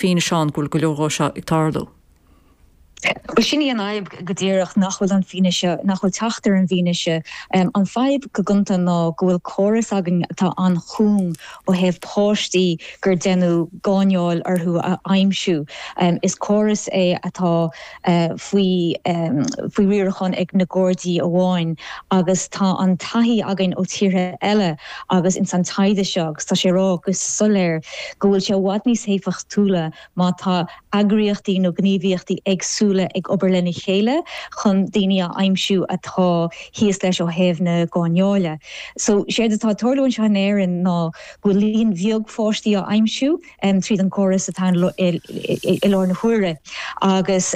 físeán go bhfuil go leor de seo ag tarlú. Bhuel, sin í an fhadhb go díreach, nach bhfuil an fianaise, nach bhfuil teacht ar an bhfianaise. An fadhb go gonta ná go bhfuil córas againn atá an-chúng ó thaobh páistí gur deineadh gáinneáil orthu a aimsiú. Is córas é atá. faoi riarachán ag na Gardaí amháin agus tá an taithí againn ó tíortha eile agus ins an taighde seo agus tá sé a rá go soiléir go bhfuil sé i bhfad níos éifeachtúla má tá eagraíochtaí nó gníomhaíochtaí éagsúla ag obair lena chéile chun daoine a aimsiú atá thíos leis ó thaobh na gáinneáile. So séard atá ag tarlú anseo in Éirinn ná go bhfuil líon bheag pháistí á aimsiú, tríd an gcóras atá ann faoi láthair na huaire agus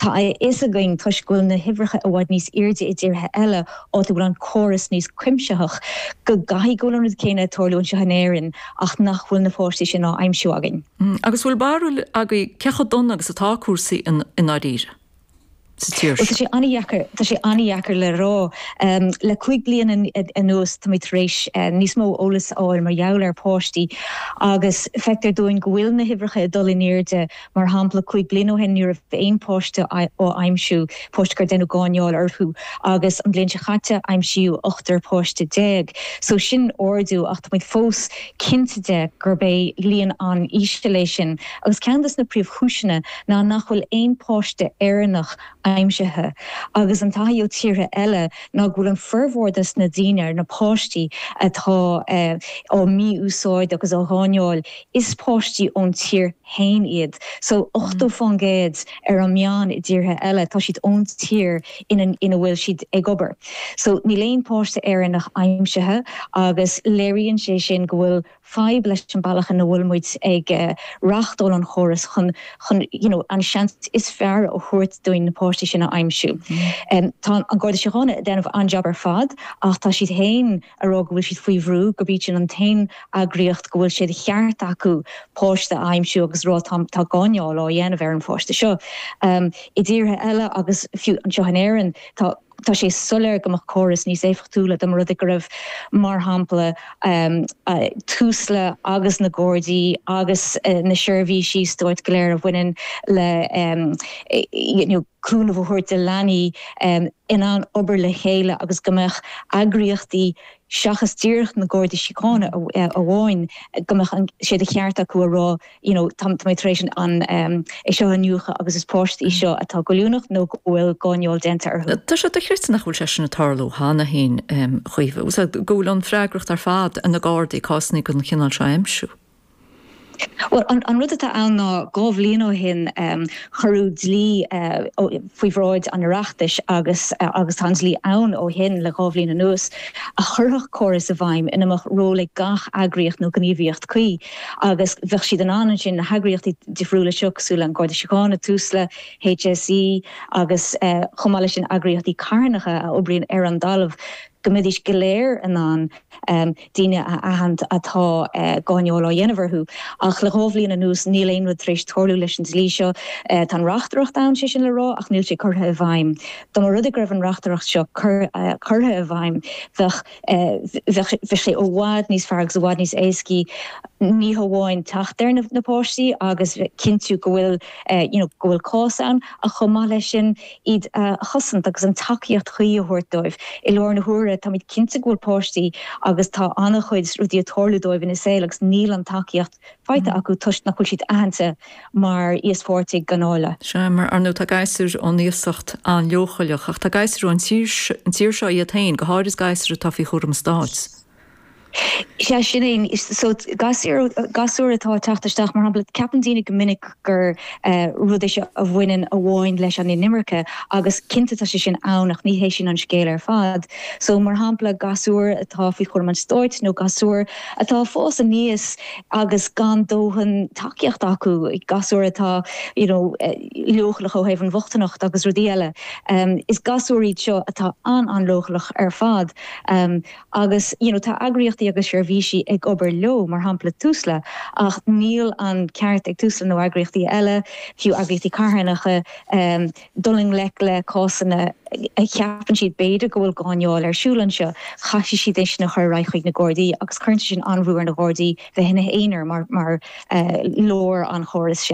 tá a fhios againn, toisc go bhfuil na huimhreacha i bhfad níos airde i dtíortha eile áit a bhfuil an córas níos cuimsitheach, go gcaithfidh go bhfuil an rud céanna ag tarlú anseo in Éirinn ach nach bhfuil na páistí sin á aimsiú againn. Agus bhfuil barúil agaibh cé chomh dona agus atá cúrsaí i ndáiríre? sa tír seo. Tá sé an-deacair le rá. Le cúig bliana anuas táimid tar éis níos mó eolais a fháil mar gheall ar páistí agus feictear dúinn go bhfuil na huimhreacha ag dul in airde. Mar shampla, cúig bliana ó shin ní raibh aon pháiste á aimsiú, páistí gur deineadh gáinneáil orthu, agus an bhliain seo caite aimsíodh ochtar páiste déag. So sin ardú ach táimid fós cinnte de gurb é líon an-íseal é sin agus ceann de na príomhchúiseanna, ná nach bhfuil aon pháiste Éireannach aimsithe, agus an taithí ó tíortha eile ná go bhfuil an formhór de na daoine, na páistí, atá á mí-úsáid agus á ngáinneáil, is páistí ón tír féin iad. So, ochtó faoin gcéad ar an meán i dtíortha eile, tá siad ón tír ina bhfuil siad ag obair. So, níl aon pháiste Éireannach aimsithe agus léiríonn sé sin go bhfuil fadhb leis an mbealach ina bhfuil muid ag reáchtáil an chórais chun chun you know an seans is fearr a thabhairt dúinn na páistí sin a aimsiú. Tá an Garda Síochána ag déanamh an-jab ar fad ach tá siad féin ag rá go bhfuil siad faoi bhrú, gurb iad sin an t-aon eagraíocht go bhfuil sé de cheart acu páiste a aimsiú agus a rá tá tá gáinneáil á dhéanamh ar an pháiste seo. I dtíortha eile agus fiú anseo in Éirinn tá. Tá sé soiléir go mbeadh córas níos éifeachtúla dá mba rud é go raibh, mar shampla, Tusla agus na Gardaí agus na seirbhísí stáit go léir a bhaineann le you know cúnamh a thabhairt do leanaí in ann obair le chéile agus go mbeadh eagraíochtaí seachas díreach na Gardaí Síochána amháin, go mbeadh sé de cheart acu a rá, you know, tá mé tar éis é seo a iniúchadh agus is páistí iad seo atá goilliúnach nó go bhfuil gáinneáil déanta orthu. Tá sé dochreidte nach bhfuil sé sin ag tarlú cheana féin agus go bhfuil an freagracht ar fad ag na Gardaí cásanna den chineál seo a aimsiú. Bhuel, an rud atá ann ná dhá bhliain ó shin cuireadh dlí faoi bhráid an Oireachtais agus tá an dlí ann ó shin le dhá bhliain anuas a chuirfeadh córas i bhfeidhm ina mbeadh ról ag gach eagraíocht nó gníomhaíocht cuí Agus bheadh siad in ann ansin, na heagraíochtaí difriúla seo cosúil le An Garda Síochána, Tusla, HSE agus chomh maith leis sin eagraíochtaí carthanacha a oibríonn ar an dtalamh, go mbeidís go léir in ann daoine a aithint a bhfuil gáinneáil á dhéanamh orthu. Ach le dhá bhliain anuas níl aon rud tar éis tarlú leis an dlí seo. Tá an reachtaireacht ann, sé sin le rá, ach níl sé curtha i bhfeidhm. Dá mba rud é go raibh an reachtaireacht seo curtha i bhfeidhm bheadh. Bheadh sé i bhfad níos fearr agus i bhfad níos éascaí ní hamháin teacht ar na páistí agus cinntiú go bhfuil you know go bhfuil cás ann ach chomh maith leis sin iad a chosaint agus an tacaíocht chuí a thabhairt dóibh. I láthair na huaire táimid cinnte go bhfuil páistí agus tá an-chuid rudaí ag tarlú dóibh ina saol agus níl an tacaíocht faighte acu toisc nach bhfuil siad aitheanta mar íospháirtigh ganáile. Sea, ar ndóigh tá gasúir ón iasacht an-leochaileach, ach tá gasúir ón tír seo iad féin, go háirid gasúir atá faoi chúram an stáit. Sea, sin é. So, gasúir atá ag teacht isteach, mar shampla, ceapann daoine go minic gur rud é seo a bhaineann amháin leis an inimirce, agus cinnte tá sé sin ann, ach ní hé sin an scéal ar fad. So, mar shampla, gasúir atá faoi chúram an stáit, nó gasúir. atá ag fás aníos agus gan dóthain tacaíocht acu, gasúir atá you know leochaileach ó thaobh an bhochtaineacht agus rudaí eile. Is gasúir iad seo atá an-an-leochaileach ar fad agus you know tá eagraíochtaí agus seirbhísí ag obair leo, mar shampla Tusla, ach níl an ceart ag Tusla nó eagraíochtaí eile, fiú eagraíochtaí carthanacha, dul i ngleic le cásanna a cheapann siad b'fhéidir go bhfuil gáinneáil ar siúl anseo, caithfidh siad é sin a chur ar aghaidh chuig na Gardaí agus cuireann sé sin an-bhrú ar na Gardaí bheith ina n-aonar mar lár an chórais sin.